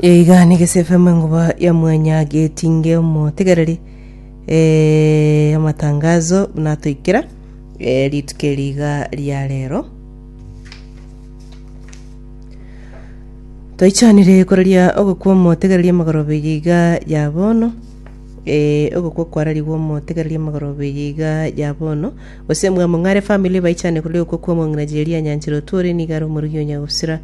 Iga nigo ase FM enkuba ya mwanya getinge omotegereri eh, amatangazo buna atoikera eh, rituko eri iga ria rero toichanire koraria ogokwa omotegereri amagorobe iga ya bono eh, ogokwa kwararigwe omotegereri amagorobe iga ya bono gose mwamong'are family baichanire koraria ogokwa kwa omong'ina jeri anyanchire otwore niga are omorigi onyagusira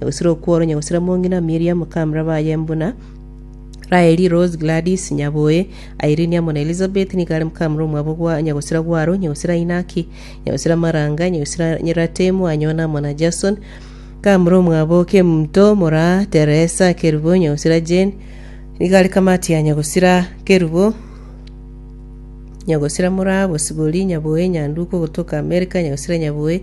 Na gosira okworo nyagosira mong'ina Miriam kamra baye buna Raeli, Rose, Gladys, Nyaboe, Irene amo na Elizabeth nigo are kamra omwabo gwa nyagosira gwaro, nyagosira Inaki, nyagosira Maranga, nyagosira Ratemu, Anyona amo na Jason, kamra omwabo Kemunto, moraa Teresa, Kerubo, nyagosira Jane, nigo are kamati ya nyagosira Kerubo, nyagosira moraa Bosibori, Nyaboe, Nyanduko, ogotoka Amerika, nyagosira Nyaboe,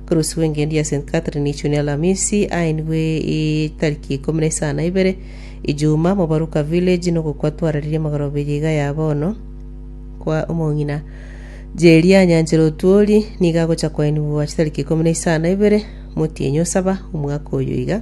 Koroswa engedi ya St. Catherine Ichuni Alamisi aenigwe etariki ikomi na isano na ibere Ijuma Mobaruka Village nogokwa twararirie magoro abiri iga ya bono kwa omong'ina Jeria Nyanchera Otuori nigo agocha koenigwa chitariki ikomi na isano na ibere Motienyi Osaba omwaka oyo iga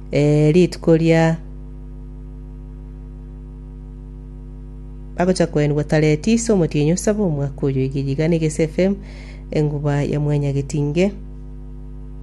Ee, rituko ria bagocha koenigwa Tareti ase omotienyi o saba omwaka oyo, egeyiga na egesefe, enguba ya mwanyagetinge.